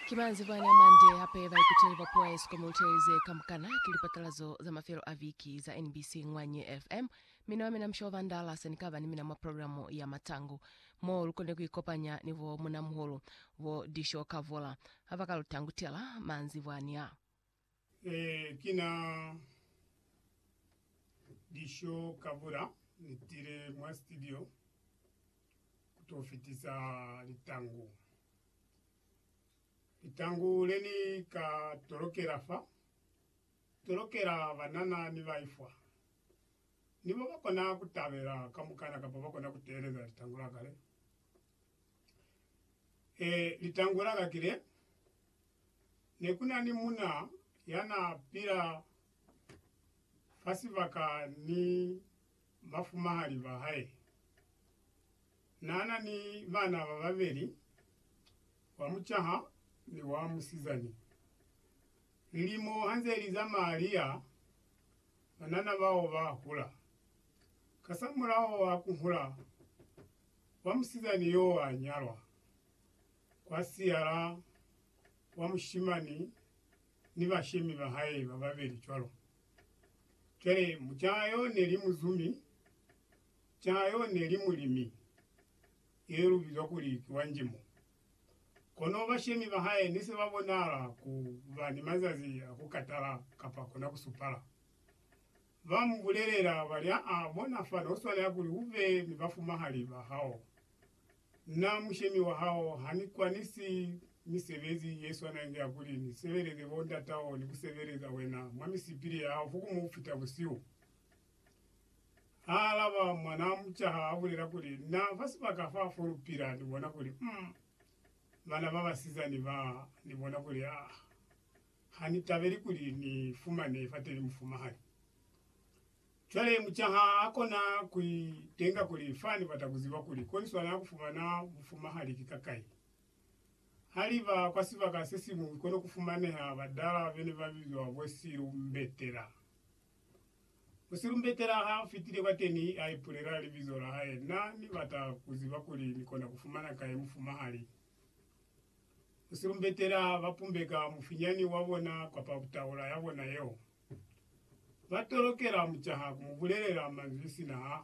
Ki manzebo ani amande hape baikuteli ba puo ya Eskom mu litele ze kamukana. Ki lipatalazo za mafelo a viki za NBC Ngwanye FM. Mina wa mina Mushobo Bandala se ni ka ba ni mina mwa programo ya Matangu, mo lu kone ku ikopanya ni bo munamuhulu bo Disho Kavula ha ba ka lu tangutela manzebo ani a. Ee, ki na Disho Kabura. Ni tile mwa studio ku to fitisa litangu. Litangu le ni ka tolokela fa, tolokela banana ni baifwa. Ni bo ba kona ku tabela kamukana kapa ba kona ku teeleza litangu la ka le. Ee, litangu la ka ki le. Ne ku na ni mun'a ya n'a pila fa sibaka ni bafumahali ba hae. N'a na ni bana ba babeli, wa mucaha ni wa musizani. Lilimo ha nze li zamaya li ya, banana bao ba hula. Kasamulaho wa ku hula, wa musizani y'o a nyalwa. kwa siyala wa mushimani ni bashemi ba hae ba babeli cwalo. Cwale, mucaa yo ne li muzumi, caa yo ne li mulimi, ye lu bizwa kuli ki wa njimo. Kono bashemi ba hae ne se ba bonahala ku ba ni mazazi a ku katala kapa kona ku supala. Ba mu bulelela, ba li, Aa, bona fani, u swanela kuli u be ni bafumahali ba hao. Na mushemi wa hao, ha ni kwanisi misebezi ye swana inge ya kuli ni sebeleze bo ndatao ni ku sebeleza wena mwa misipili ya hao fo ku mu fita busihu? Ha alaba, mwanaa mucaha a bulela kuli, Na fa sibaka fa fo lu pila, ni bona kuli, um, bana ba basizani ba, ni bona kuli, ah, ha ni tabeli kuli ni fumane fateni mufumahani. Cwale mucaha a kona ku itenga kuli, Fa ni bata ku ziba kuli ko ni swanela ku fumana bufumahali ki kakai. Ha li ba kwa sibaka se siñwi ki kono ku fumaneha badala be ne ba bizwa bo silumbetela. Musilumbetela ha fitile kwateni, a ipulela libizo la hae, Na ni bata ku ziba kuli ni kona ku fumana kai mufumahali. Musilumbetela ba pumbeka mufinyani wa bona kwapa taula ya bona yeo. Ba tolokela mucaha ku mu bulelela manzwi sina ha